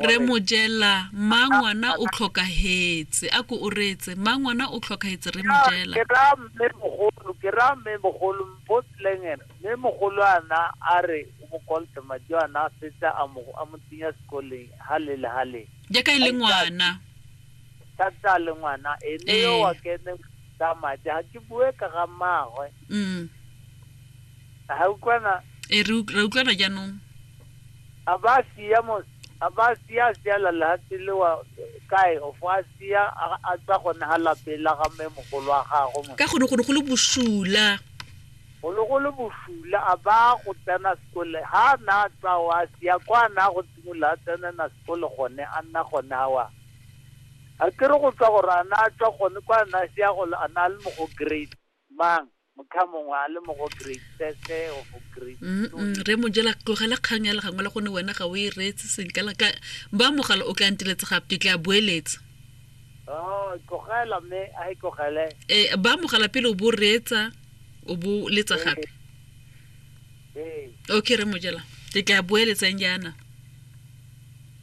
re mojela mma ngwana o tlhokagetse a ko o reetse mma ngwana o tlhokagetse re mojela ke ra mme mogolo ke ra mme mogolo mpotleng ene mme mogolo ana a re o mo kolte madi ana a setse a mo a mo tsenya sekoleng ha le le ha le jaaka e le ngwana thata le ngwana ene yo wa kene tsa madi ha ke bue ka ga mmagwe A ga utlwana? E re ra utlwana jaanong. A ba sia mo a ba sia sia la lehatshe le wa kae of a sia a tsa gone ha lape la ga mme mogolo wa gago mo ka gone go ne go le bosula go le go le bosula a ba go tsena sekole ha na tsa wa sia kwa na go tsimolola a tsena na sekole gone a nna gone ha wa a ke re go tswa gore a na tswa gone kwa na sia go a na le mo go grade Mang? Motlhamongwe a le mo go grade sese o go grade re mo jela tlogela kgang ya legangwe la gone wena ga o e reetse senka la ka ba mogala o ka ntiletse gape ke tla boeletse oh, tlogela mme a e tlogele eh ba mogala pele o bo reetsa o bo letsa eh. gape eh okay re mo jela ke tla boeletsang jaana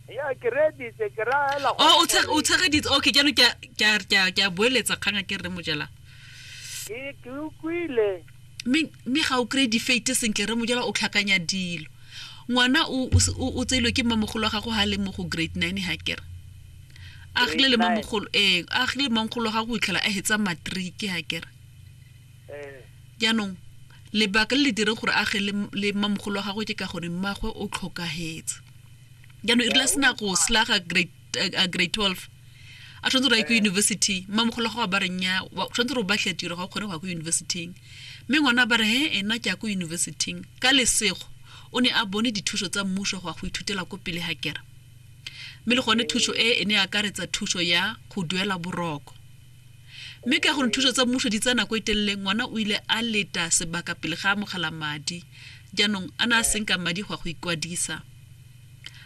ya ke reeditse ke ra hela oh, o tshegeditse okay jaanong ke a boeletsa kgang a ke re mo jela ee ke utlwile mme ga o kry-e difate sentle re mojela o tlhakanya dilo ngwana o tseilwe ke mmamogolo wa gago ga le mo go grade nine ga kere a gile le mmamogolo ee a gile le mmamogolo wa gago o itlhela a hetsa matriki ga kere eh. jaanong lebaka le le dire gore a ge le mmamogolo wa gago ke ka gore mmagwe o tlhokagetse jaanong e rile a sena go slaga grade eh, a grade 12 a tshwanetse gore a ye ko eh. university mmamogolo go ba reng ya tshwanetse gore ba tlhe tiro ga o kgone go ya ko universityng mme ngwana ba re he ena ke ya ko universityng ka lesego o ne a bone dithuso tsa mmuso go ya go ithutela ko pele ga kera mme le gone thuso e e ne akaretsa thuso ya go duela boroko mme ka gore thuso tsa mmuso di tsa nako e telele ngwana o ile a leta sebaka pele ga amogela madi jaanong a ne a senka madi go ya go ikwadisa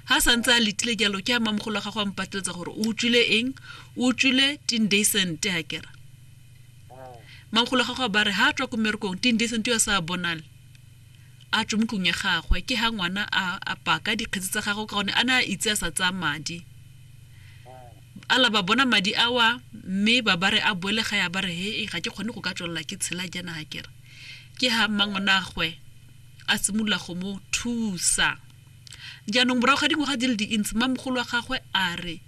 Ga a santse a letile jalo, ke ha mmamogolo wa gagwe a mpateletsa gore o utswile eng, o utswile tindesente ha kera. Mmamogolo wa gagwe a bare ha a tswa ko mmerekong tindesente yo a sa a bonale a tswe mo tlong ya gagwe, ke ha ngwana a paka dikgetsi tsa gagwe ka gone a ne a itse a sa tsaya madi. A la ba bona madi a wa mme ba bare a boele ga ya bare he ga ke kgone go ka tswelela ke tshela jana ha kera. Ke ha mmangwanagwe a simolola go mo thusa. Jaanong morago ga dingwaga di le dintsi, mmamogolo wa gagwe a re,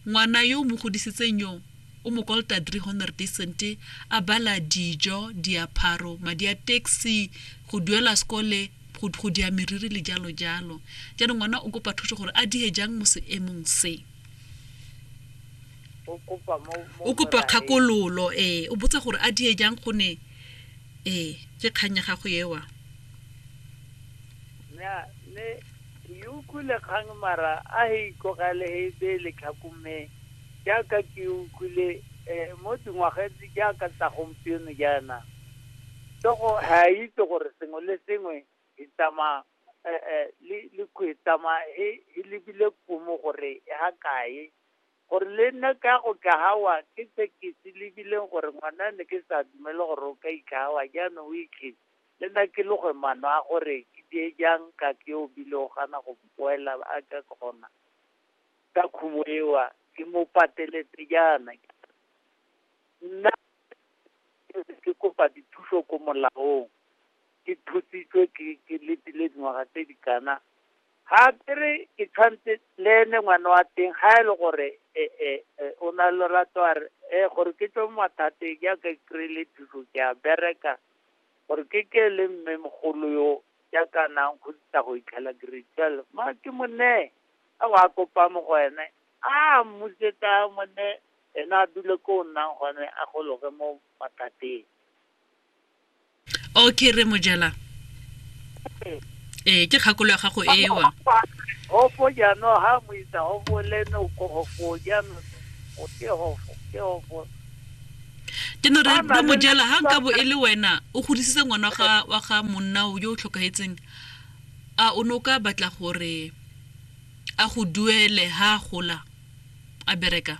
Ngwana yo o mo godisitseng yo, o mo kolota drie honderd duisendte, a bala dijo, diapharo, madi a taxi, go duela sekole, go, go dia meriri le jalo jalo. Jaanong ngwana o kopa thuso gore a die jang mo seemong se. O kopa mo, mo O kopa moraeng. kgakololo, ee. O botsa gore a die jang gone, ee, ke kgang ya gago ewa. Nya, ne, ke utlwile kgang mara a he itlogele he be letlhakume jaaka ke utlwile eh, mo dingwagetse jaaka tsa gompieno jaana tsogo ha itse gore sengwe le sengwe e tsamaya eh, eh, le le kwe tsamaya he he lebile kumo gore e ha kae Gore le nna ka go kahawa ke se ke se lebileng gore ngwana ne ke sa dumele gore o ka ikahawa jaanong o ikge le nna ke loge mano a gore ke die jang ka ke o bile o gana go mpoela a ka kgona ka khumo ewa ke mo pateletse jaana nna ke kopa dithuso ko molaong ke thusitswe ke ke letile dingwaga tse di kana Ga ke re ke tshwantse le ene ngwana wa teng ga e le gore eh, eh, eh, o na le lorato a re eh, gore ke tswe mo mathateng jaaka ke kry-ile thuso ke a bereka gore ke ke le mme mogolo yo jaaka nang go tsa go itlhela grade twelve ma ke mo neye a wa kopa mo go ene a mmutse ka mo ne ene a dule ko o nnang gone a gologe mo mathateng okay re mojela ee ke kgakolo ya gago ewa hofo jaanong ha mo itsa hofo le no ko hofo jaanong o ke hofo ke hofo ke no re re mojela ha nka bo e le wena o godisitse ngwana ga wa ga monna o yo o tlhokagetseng a o ne o ka batla gore a go duele ha a gola a bereka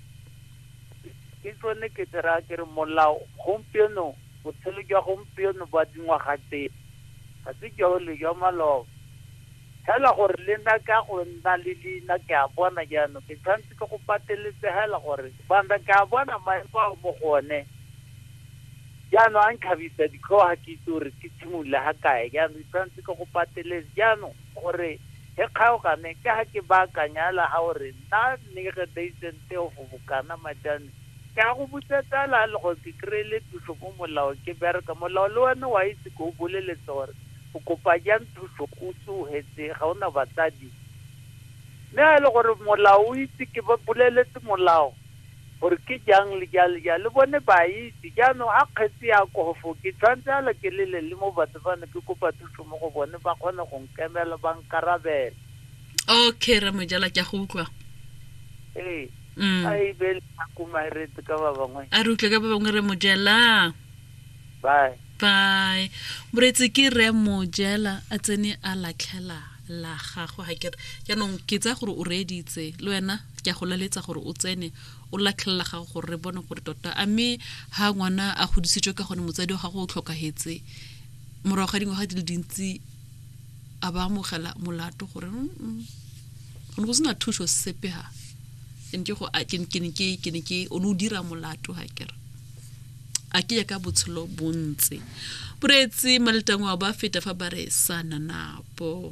Ke tsone ke tse raya ke re molao gompieno botshelo jwa gompieno ba dingwaga tse ga se jole jwa maloba. Hela gore le nna ka go nna le leina ke a bona jaanong ke tshwanetse ke go pateletse hela gore bana ke a bona maemo a mo go one jaanong a nkhabisa ditlhogo ga ke itse gore ke tshimolole ga kae jaanong ke tshwanetse ke go pateletse jaanong gore he kgaogane ke ga ke baakanya hela ga gore Nna ne ke reitse nte go bokana majane ke a go butsa tsala le gore ke kry-ile thuso mo molao ke bereka molao le one wa itse ke o boleletse gore o kopa jang thuso o tsogetse ga o na batsadi mme ga e le gore molao o itse ke ba boleletse molao gore ke jang le ja le ja le bone ba itse jaanong a kgetse ya kofo ke tshwanetse ala ke lele le mo batho bane ke kopa thuso mo go bone ba kgone go nkemela ba nkarabela okay ra mojala ke a go utlwa ee Mm. a e be le akomaretse ka ba bangwe a re utlwe ka ba bangwe re mojela bye bye moretsi ke re mojela a tsene a latlhela la gago ga kere jaanong ke tsaya gore o reeditse le wena ke a go laletsa gore o tsene o latlhela la gago gore re bone gore tota a mme ga ngwana a godisitswe ka gone motsadi wa gago o tlhokagetse morago ga dingwaga di le dintsi a ba amogela molato gore go ne go sena thuso sepe ha ke ne go ke ne ke ke ne ke o ne o dira molato ha ke re a ke ya ka botshelo bontse boreetse maletangwa ba feta fa ba re sa nanapo